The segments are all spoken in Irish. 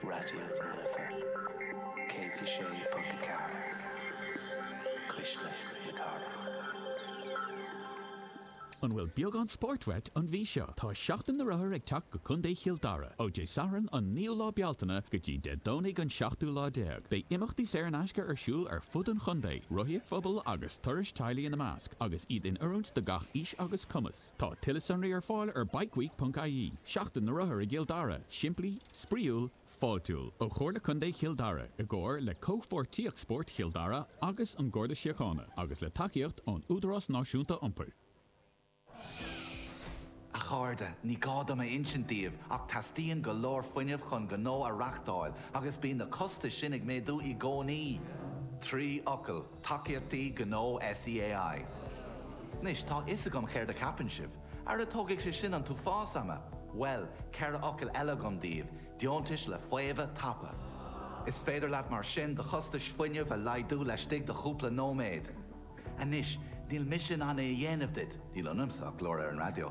Raidió na Life 106.4, Cuisle na Cathrach. An bhfuil beagán spóirt uait an mhí seo? Tá Seachtain na Rothar ag teacht go Contae Chill Dara! Ó Dé Sathairn an 9ú lá Bealtaine go dtí Dé Domhnaigh an 17ú lá, beidh imeachtaí saor in aisce ar siúl ar fud an chontae, rothaíocht phobail agus turais teaghlaigh ina measc, agus iad in oiriúint do gach aois agus cumas. Tá tuilleadh sonraí ar fáil ar bikeweek.ie, Seachtain na Rothar i gCill Dara, simplí, spraíúil, fáiltiúil. Ó Chomhairle Contae Chill Dara, i gcomhar le Comhpháirtíocht Spóirt Chill Dara agus an Garda Síochána, agus le tacaíocht ón Údarás Náisiúnta Iompair. A chairde, ní gá dom a insint daoibh ach teastaíonn go leor fuinnimh chun gnó a reachtáil agus bíonn na costais sin ag méadú i gcónaí! Trí fhocal. Tacaíochtaí Gnó SEAI. Anois, tá a fhios agam céard a cheapann sibh. Ara tógfaidh sé sin an t-uafás ama! Bhuel, ceithre fhocal eile agam daoibh, deontais le faomhadh tapa. Is féidir leat mar sin do chostais fuinnimh a laghdú laistigh de chúpla nóiméad. Anois, níl mise in ann é a dhéanamh duit, níl ionamsa ach glór ar an raidió.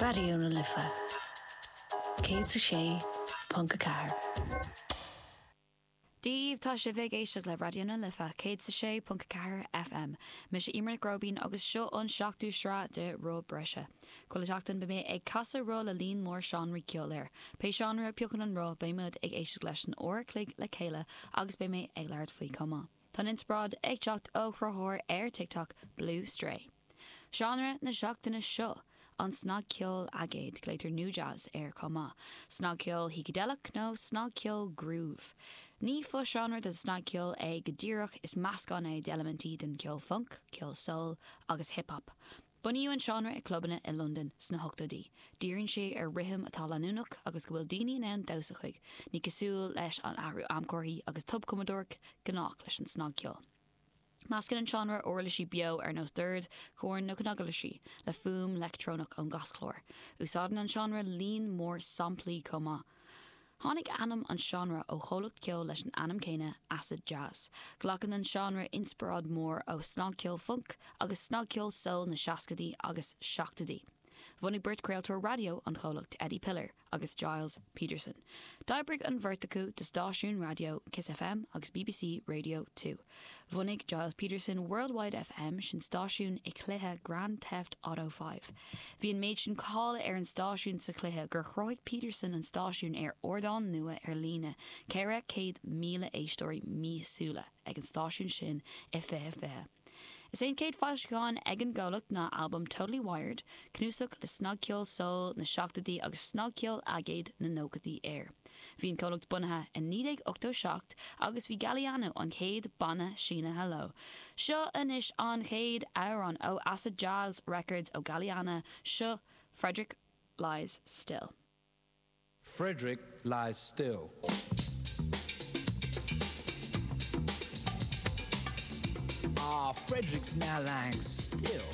Raidió na Life 106.4. Daoibh, tá sibh ag éisteacht le Raidió na Life 106.4 FM. Mise Emer Nic Róibín agus seo an seachtú sraith de Roth Breise. Chuile sheachtain beidh mé ag casadh roth le líon mór seánraí ceoil air. Pé seánra a phiocann an roth beimid ag éisteacht leis an uair a chloig le chéile agus beidh mé ag labhairt faoi chomh maith. Tá an inspioráid ag teacht ó chruthaitheoir ar TikTok, Blue Stray. Seánra na seachtaine seo, an snagcheol aigéid, glaotar nu-jazz air chomh maith, snagcheol shícideileach nó snagcheol groove. Ní fo-seánra den snagcheol é go díreach, is meascán é d'eilimintí den cheol func, ceol soul agus hip-hop. Bunaíodh an seánra i clubanna i Londain sna hochtóidí. Díríonn sé ar rithim atá leanúnach agus go bhfuil daoine in ann damhsa chuig, ní cosúil leis an athrú amchorthaí agus tobchumadóireacht gnách leis an snagcheol. Meascann an seánra uirlisí beo ar nós doird, corn nó cnaguirlisí le fuaim leictreonach ón gcaschlár. Úsáideann an seánra líon mór samplaí chomh maith. Tháinig ainm an seánra ó chomhlacht ceoil leis an ainm céanna, Acid Jazz. Glacann an seánra inspioráid mhór ó snagcheol func agus snagcheol soul na seascaidí agus seachtóidí. Bhunaigh beirt craoltóir raidió an chomhlacht, Eddie Piller agus Gilles Peterson. D'oibrigh an bheirt acu do stáisiúin raidió Kiss FM agus BBC Radio Two. Bhunaigh Gilles Peterson World Wide FM, sin stáisiún i cluiche Grand Theft Auto V. Bhí an méid sin cáil ar an stáisiún sa chluiche gur chruthaigh Peterson an stáisiún ar ardán nua ar líne, 400,000 éisteoirí míosúla ag an stáisiún sin i 2020. Is é an chéad foilseachán ag an gcomhlacht ná albam Totally Wired, cnuasach le snagcheol soul na seachtóidí agus snagcheol aigéad na nóchaidí air. Bhí an comhlacht bunaithe i 1987 agus bhí Galliano an chéad banna sínithe leo. Seo anois an chéad amhrán ó Acid Jazz Records ó Galliano, seo Frederick Lies Still. Frederick Lies Still. Ah, Frederick's now lying still.